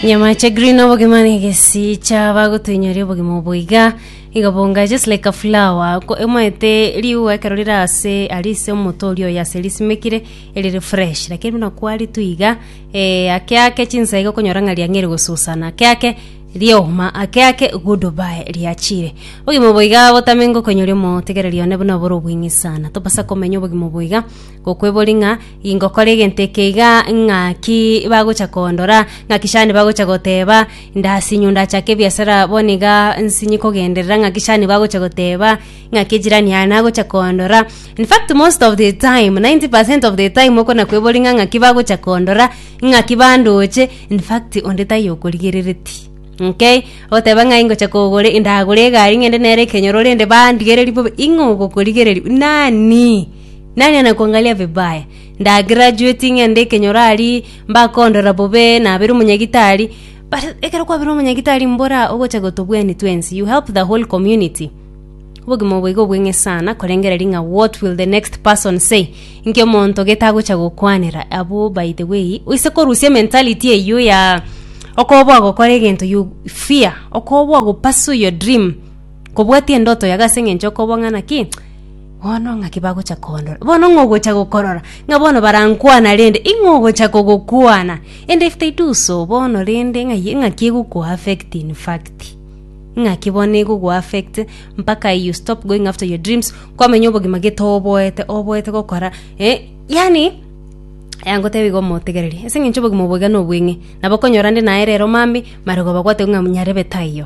Nyama cha green obogima na egesi cha bagotoinyoria obogima obo iga iga bonga just like a flower ko emaete riu ekero rire ase ari ase omoto oria oyo ase risimekire erire fresh lakini buna kwaritu iga eh, ake ake chinsa iga okonyora ng'a riang'eire gosusana ake ake rioma ake ake good bye riachire obogima obo iga botame ngokoinyoria omotigereria one buna obore obweng'isana tobasa komenya obogima obo iga. Gokwebori ng'a ingokora egento eke iga ng'aki bagocha koondora, ng'aki shani bagocha goteeba, ndasinyu ndachake ebiasara bono iga nsinyi kogenderera ng'aki shani bagocha goteeba, ng'aki ejirani yane agocha koondora. In fact most of the time, 90% of the time okona kwebori ng'a ng'aki bagocha koondora, ng'aki bandoche, in fact onde taiyo okorigerereti. Okay, ogoteba ng'a ingocha kogora ndagore egari ng'ende nere ekenyoro rende bandigereri bobe, ing'o ogokorigereri? Nani? Nani anakwangaria vibaya? Ndagirajueti ng'ende ekenyoro aria mbakondora bobe nabere omonyagitari, but ekero kwabire omonyagitari mbora ogocha gotobwenia twensi, you help the whole community. Obogima obo iga obweng'e sana korengera ring'a what will the next person say inki omonto gete agocha gokwanera abwo by the way oise korusia ementality eywo ya okoba ogokora egento you fear okoba ogopursue your dream. Kobwatia endoto yago ase engencho okoba ng'a naki, bono ng'aki bagocha kondora. Bono ng'a ogocha gokorora, ng'a bono barankwana rende, ing'o ogocha kogokwana. Ende if they do so, bono rende ng'ai- ng'aki egoku affect in fact. Ng'aki bono egoku affect mpaka you stop going after your dreams, kwamenya obogima gete oboete, oboete gokora eh, yaani, yaya ngotebi iga omotegereri, ase eng'encho obogima obo iga nobweng'e, nabo okonyora ande naye rero mambia, maragoba gwateba ng'a nyarebe taiyo.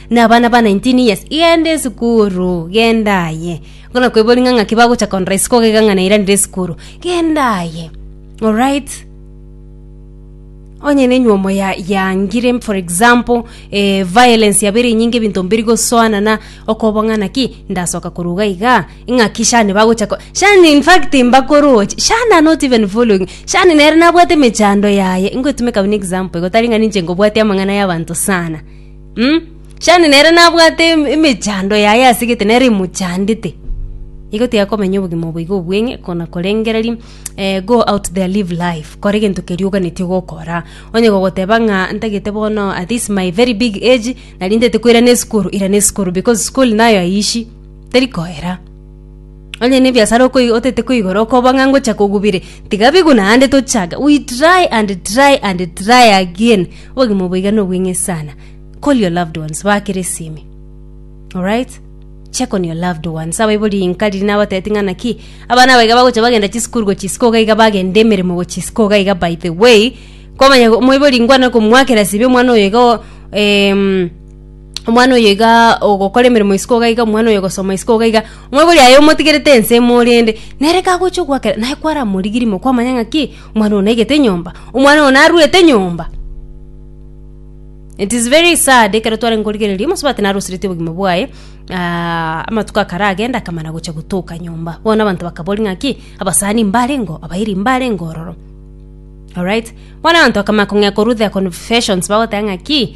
Nabana ba nineteen years, genda esukuru, genda aye. Nkona kwebori ng'a ng'aki bagocha korora isiko iga ng'a nairanire esukuru. Genda aye. Alright? onye nenyuomo ya yangire for example eh, violence yabere enyinge ebinto mbiri gosoanana okobong'ana ki ndasoka koruga iga ing'aki shani bagocha ko shani in fact mbakoroche shani are not even following shani nere nabwate emechando yaye ingoetumeka buna example igo tari ng'a ninche ngobwatia amang'ana y'abanto sana Mm, shani nere nabwate em- emechando yaye ase egete nere emochandete igo tiakomenya obogima obo iga obweng'e kona korengereria eh, go out there live life kora egento keria oganetie gokora onye gogoteba ng'a ntagete bono at this my very big age nari ntete koirana esukuru irana esukuru because school nayo aishi teri koera Onye nebiasara okoiga otete koigora okoba ng'a ngocha kogubire, tiga bigwe naende tochake. We try and try and try again. Obogima oboiga nobweng'e sana. Call your loved ones baakere esimi. Alright? Check on your loved ones. Abaibori inka riria nabatebeti ng'a naki abana aba iga bagocha bagenda chisukuru gochia isiko iga iga bagenda emeremo gochia isiko iga iga by the way, kwamanya omoibori ngwana komoakera esimi omwana oyo iga o em, omwana oyo iga ogokora emeremo isiko iga iga omwana oyo ogosoma isiko iga iga mwebori aye omotigerete ense ime orende nere kagocha ogwakera naye kwaramorigiri ime kwamanya ng'aki omwana oyo naigete enyomba omwana oyo narwete enyomba it is very sad ekero twarenge korigereria omosobe ati narosiretie obogima bwaye amatuko akaragenda akamana gocha gotoka nyomba bono abanto bakabori ng'aki abasani mbarengo abairi mbarenge ororo orit bono abanto bakama kong'ea korwa the confessions bagoteba ng'aki.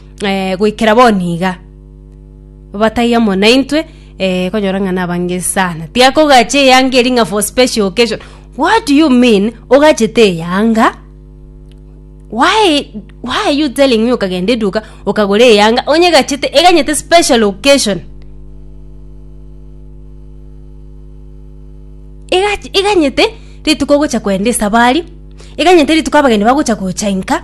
eh, goikera boni iga batai amo naintwe eh, konyora ng'a nabange sana tiakogacha eyanga eri ng'a for special occasion what do you mean ogachete eyanga why why are you telling me ukagenda eduka ukagura eyanga onye gachete eganyete special occasion Ega- eganyete rituko ogocha kwenda esabari eganyete rituko abageni bagocha gochainka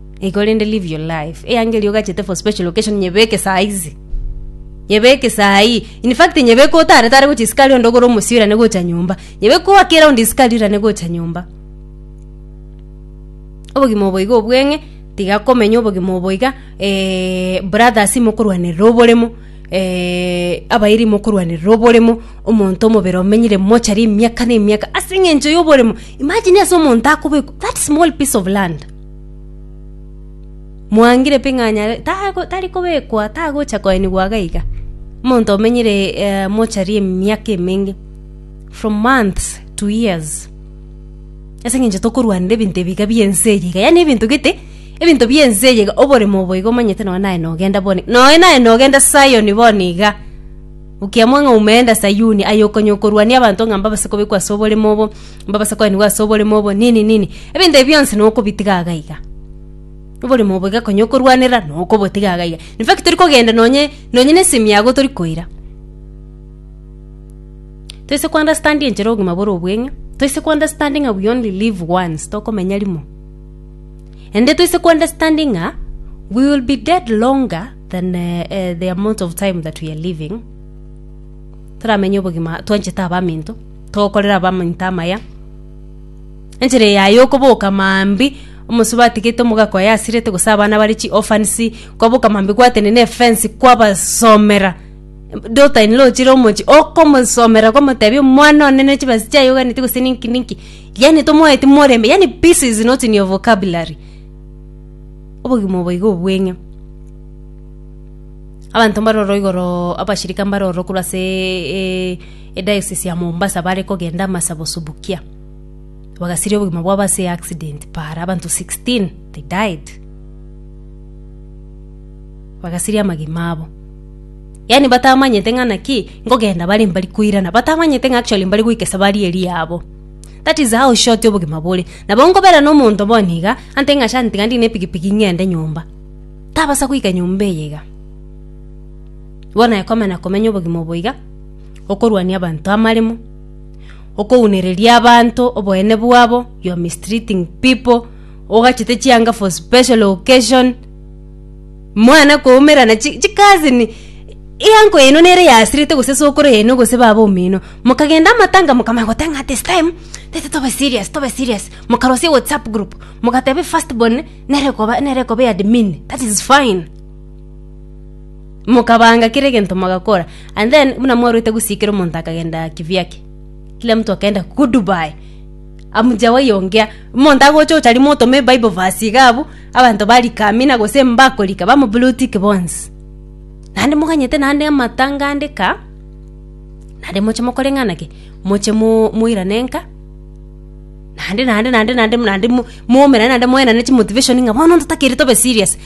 Igo rende live your life. Eyangeli ogachete for special occasion nyebeke saa hizi. Nyebeke saa hii. In fact nyebeke otare tare gocha isikari onde ogore omosi orane gocha nyomba. Nyebeke owake round isikari orane gocha nyomba. Obogima obo igo obweng'e tiga komenya obogima obo iga eh, brothers imokorwanerera oboremo eh, abairi imokorwanerera oboremo omonto omobere omenyire mochari emiaka na emiaka ase eng'encho yoboremo. Imagine ase omonto akobekwa that small piece of land. mwangire pi ng'a nyare tago- tari kobekwa tagocha koenigwa iga iga omonto omenyire eh, mochari emiaka emenge from months to years ase eng'encho tokorwanera ebinto ebi iga bia ense eye iga yaani ebinto gete ebinto bia ense eye iga oboremo obo iga omanyete nonye naye nogenda boni nonye naye nogenda zion bono iga okiamwa ng'a umeenda sayuni aye okonyokorwania abanto ng'a mbabase kobekwa ase oboremo obo. Mbabase koenigwa ase oborimo obo nini nini, ebinto ebi bionsi nokobitiga iga iga. Oborimo obo iga konya okorwanera nokobotiga iga iga. In fact tori kogenda nonye nonye na esemi yago tori koira. Toise ko understand enchera obogima bore obweng'e, toise ko understand ng'a we only live once, tokomenya rimo. Ende toise ko understand ng'a we will be dead longer than eh, eh, the amount of time that we are living. Toramenye obogima twanchete abaminto. Tokorere abaminto amaya. Enchera eye yaye okoboka maambia, omosubati atigete omogaka oye asirete gose abana bare chi orphans, kwaboka maambia gwatenena efence kwabasomera, daughter in law ochire omochie, okomosomera kwamotebia omwana one ne chibesa chiaye oganeti gose ninki ninki, yaani tomoeti moreme, yaani peace is not in your vocabulary. Obogima obo iga obweng'e. Abanto mbare oro igoroo abashirika mbare oro korwa aseeee. Ediocese ya Mombasa bare kogenda amasabo Subukia bagasiria obogima bwabo ase accident paara abanto 16 they died bagasiria amagima abo yaani batamanyete ng'a naki nkogenda bare mbari koirana batamanyete ng'a actually mbari goika esabari eri yabo that is how short obogima bore nabo nkobera na omonto bono iga ante ng'a asha ntiga ndine epikipiki ng'ende nyomba tabasa goika nyomba eye iga bono aye komenya komenya obogima obo iga. okorwania abanto amaremo, okounereria abanto oboene bwabo, you are mistreating people, ogachete chianga for special occasion, mwana koumerana chi- chikazi ni eanko yaino nere yasirete gose sokoro yaino gose baba omino, mokagenda amatanga mokamanya goteba ng'a this time tete tobe serious tobe serious, mokarosia ewhatsapp group, mogateba efirst born nere ekoba nere ekoba eadmin, that is fine. Mokabanga kera egento mogakora. And then buna mwaruete gusikera omonto akagenda kivyake. Kila mtu akaenda goodbye. Amujawayi ongea. Omonto agocha ochari motome Bible verse iga abu abanto barika amina gose mbakorika bamo blue tick bonsi. Nande moganyete nande amatanga ande ka nande moche mokore ng'ana ki? Moche mo moirane nka nande nande nande nande nande mo momerane nande moenane chimotivation ng'a bono ntotakiri tobe serious.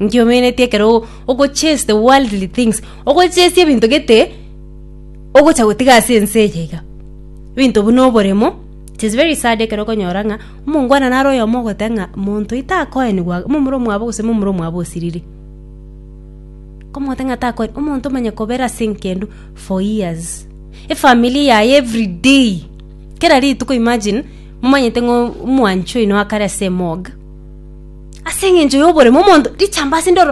Nkiomenetie ekero ogochase the worldly things ogochase ebinto gete ogocha gotiga ase ense eye iga ebinto buna oboremo it is very sad ekero okonyora ng'a omongwana naro oyomo ogote ng'a monto oyo takoenigwa iga momura omwabo gose momura omwabo osiriri komote ng'a takoe omonto omanye kobera ase enkendwa for years efamiri yaye everyday kera rituko imagine. Momanyete ng'a omwanchi oino akare ase emooga, ase engencho y'oboremu omonto richamba ase endoro,